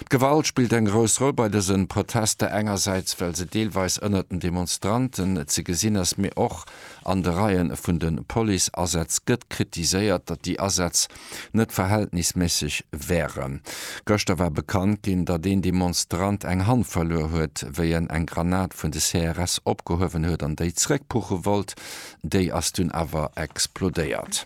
D'Gewalt spillt eng grouss Roll bei dësen Protester, engersäits well se deelweis ënnert den Demonstranten ze gesinn ass, mee och an de Reien vun den Police-Asätz gëtt kritiséiert, datt déi Asätz net verhältnisméisseg wären. Gëschter war bekannt ginn, datt een Demonstrant eng Hand verluer huet, wéi en eng Granat vun de CRS opgehuewen huet an déi zeréckpuche wollt, déi ass dunn awer explodéiert.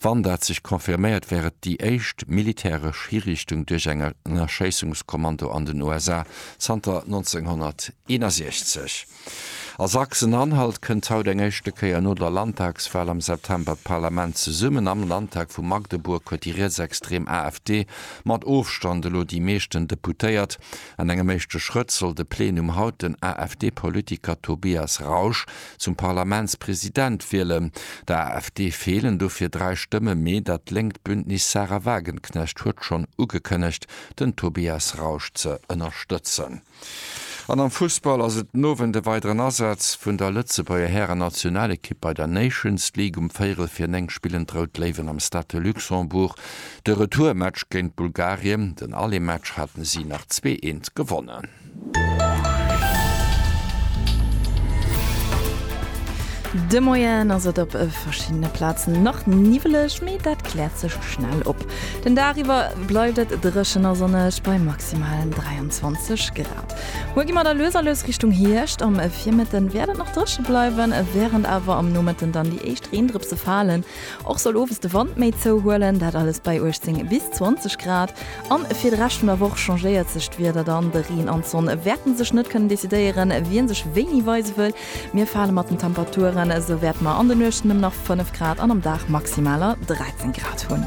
Wann dat sech confirméiert, wär et déi éischt militäresch Hiriichtung duerch eng Erschéissungskommando an den USA zanter 1961. A Sachsen-Anhalt kënnt haut eng éischte Kéier no der Landtagswal am September d'Parlament zesummen. Am Landtag vu Magdeburg huet déi rietsextrem AfD mat Ofstand elo déi meeschten Deputéiert. An engem éischte Schrëtt soll de Plenum haut den AfD-Politiker Tobias Rausch Zum Parlamentspresident wielen. Der AfD feelen dofir 3 Stëmme mee dat lénkt Bündnis Sahra Wagenknecht huet schonn ugekënnegt den Tobias Rausch ze ënnerstëtzen. An am Fussball ass et den Owend e weideren Asaz vun der Lëtzebuerger Hären-Nationalekipp bei der Nations League. Um véierel vir 9 spillen d'Rout Léiwen am Stade de Luxembourg de Retourmatch géint Bulgarien. Den Alematch haten si nach zwee eent gewonnen. De Moien ass et op verschiddene Plazen nach niwweleg, mee dat kläert sech schnell op. Den Dag iwwer bleift et dréchen a sonneg bei maximalen 23 Grad. Muer gi mer da lues a lues Richtung Hierscht. Am Virmëtten wäert et nach dréche bleiwen, wärend awer am Nomëtten dann déi éischt Reendrëpse falen. Och soll owes de Wand méi zouhuelen, dat alles bei 18 bis 20 Grad. An fir de Rescht vun der Woch changéiert sech d'Wieder dann. De Reen an d'Sonn wäerten sech net kënnen decidéieren, wien sech wéini weise wëll. Mir fale mat den Temperaturen esou wäerte mer an de Nuechten nëmmen nach 5 Grad an am Dag maximaler 13 Grad hunn.